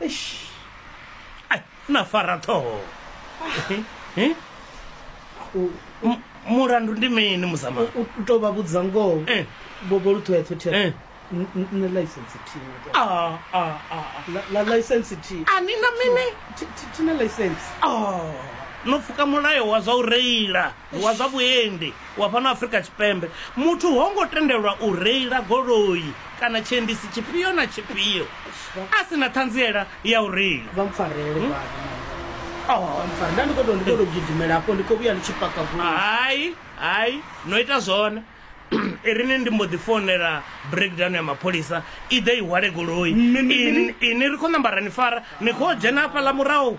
eish ai na fara ṱhoho Eh, eh? U- M- mulandu ndi mini muzama u u tou vha vhudza ngoho Eh. bobo luṱhoeṱho Eh. thea nṋe license thina Ah, ah, ah, ah. la license thi a ni na mini thi- thi- thina license Oh, no pfuka mulayo wa zwa u reila wa zwa vhuendi wa fhano Afrika Tshipembe, muthu ho ngo tendelwa u reila goloi kana tshiendisi tshifhio na tshifhio a si na ṱhanziela ya u reila. Vha mpfarele vha Oh. vha mpfarele. Nda ndi khou tou ndi khou tou gidimela hafho ndi khou vhuya ndi tshi paka goloi. Hai, hai, no ita zwone. Irini ndi mbo ḓi founela breakdown ya mapholisa i ḓe i hwale goloi. Mini, mini? Ini- Ini ri khou namba ra ni fara, ni khou dzhena hafhaḽa murahu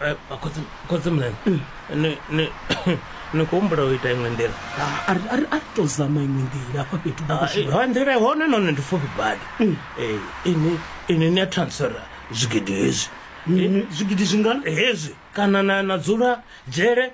Eh, khotsi khotsi mlene ni ni ni khou humbula u ita iṅwe nḓila Ah, a ri- a ri a ri to zama iṅwe nḓila hafha fhethu Ah, eh, bakashiba ha nḓila ihone none ndi pfufhi badi Eh, ini ini ni a transfera zwigidi hezwi Eh, zwigidi zwingana hezwi kana na na dzula dzhele